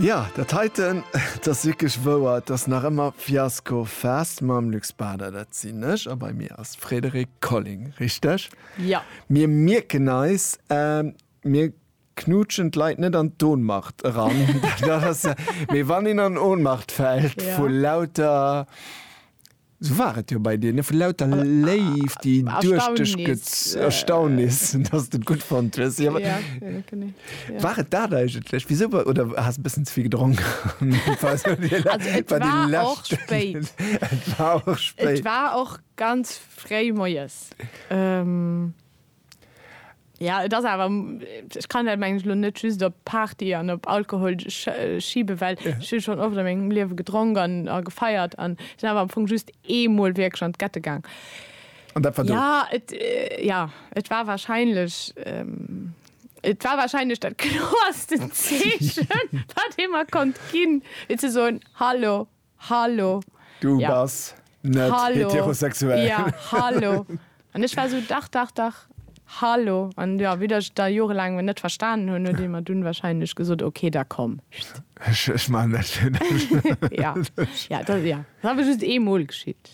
Jo, dat heiten, et ass wierklech wouer, et ass nach ëmmer Fiasco Fest mam Luc Spader, dat sinn ech, a bei mir ass Frédérique Colling, richteg? Jo. Mir mierken eis, mir knutschen d'Leit net an d'Ohnmacht eran, dat ass, mee wann een an Ohnmacht fält vu lauter. Sou war et jo bei dir, ne? Vu lauter Léift, déi duerch dech get. Erstaunnis. Erstaunnis, dass s de et gutt fonnt hues. Jo, Ja, jo, genee. Ja. War et dat eigentlech? Wisou wa-, oder has e bëssen ze vill gedronk? Also, et war och spéit. Et war och spéit. Et war och ganz fréi moies. Ja, et ass awer, ech kann dat mengen ech elo net just op Party an op Alkohol schiben, well ech hu schonn oft a mengem Liewe gedronk an a gefeiert an sinn awer am Fong just eemol wierklech an d'Gette gaang. An dat war do? Ja, et, ja, et war wahrscheinlech, et war wahrscheinlech dat kloersten Zeechen, wat ee mer konnt ginn, fir ze soen, Hallo, Hallo. Du ja. bass net Hallo. heterosexuell. Ja, hallo. An ech war so, dach, dach, dach. Hallo. An ja, wéi ech da jorelaang net verstanen hunn, huet ee mer dunn wahrscheinlech gesot, okay, da komm. Ech, ech maachen dat fir dech. Ja, ja, dat, ja. Dat awer just eemol geschitt.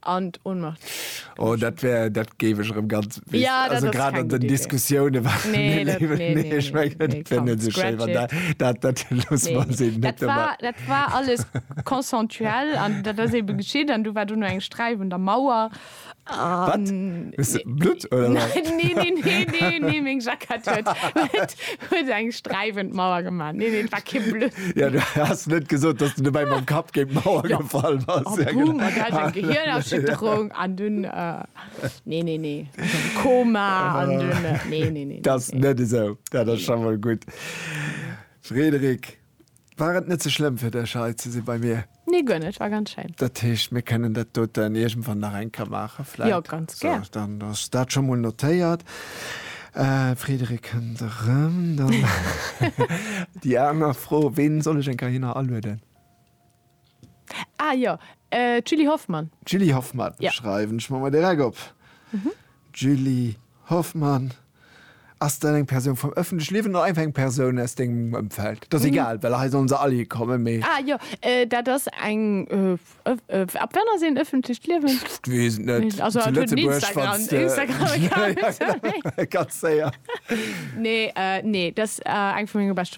An d'Ohnmacht. Oh, dat wär, dat géif ech erëm ganz, weess, ja, also grad an den Diskussiounen waren nee, dat, nee, nee, nee, ich mein, nee, dat wär net so schön, wann dat, dat, dat los nee, nee. Dat, war, dat war alles konsensuell an dat ass eben geschitt an du war du nur eng Streif und der Mauer. Wat? Bist du Blut oder? Nein, nee, nee, nee, nee, nee, meng Jackett huet, Huet eng streiwend Mauer gemacht. Nee, nee, war kein Blöd. Ja, du hast net gesot, dass du dabei ja. mam Kapp géint Mauer ja. gefall was. Oh, ja, boom, genau. hat eng Gehirnerschütterung ja. an dun äh, nee, nee, nee. Koma an ah. dun äh, nee, nee, nee. Das nee. net esou. Ja, das nee. schon mal gut. Frederik. War et net ze schlëmm fir dech hei ze si bei mir? Nee, guer net, war ganz schéin. Dat heescht, mir kënnen dat doten iergendwann nach eng Kéier maachen vläit? Jo, ganz gär. Sou, dann ass dat scho mol notéiert. D'Frédérique kënnt erëm. Dann déi aner Fro, Ween soll ech eng Kéier hinner alueden? Ah jo, d'Julie Hoffmann. D'Julie Hoffmann schreiwen ech mer mol direkt op. D'Julie Hoffmann, ass dat eng Persoun vum ëffentlech Liewen oder einfach eng Persoun aus dengem Ëmfeld? Dat ass egal, well hei sollen se all hir kommen, mee. Ah jo, dat ass eng, ab wann ass een ëffentlecht Liewen? Pff, weess et net. Also hatt huet en Instagram, Instagram-Account. Ganz séier. Nee, nee, dat ass eng vu menge beschte.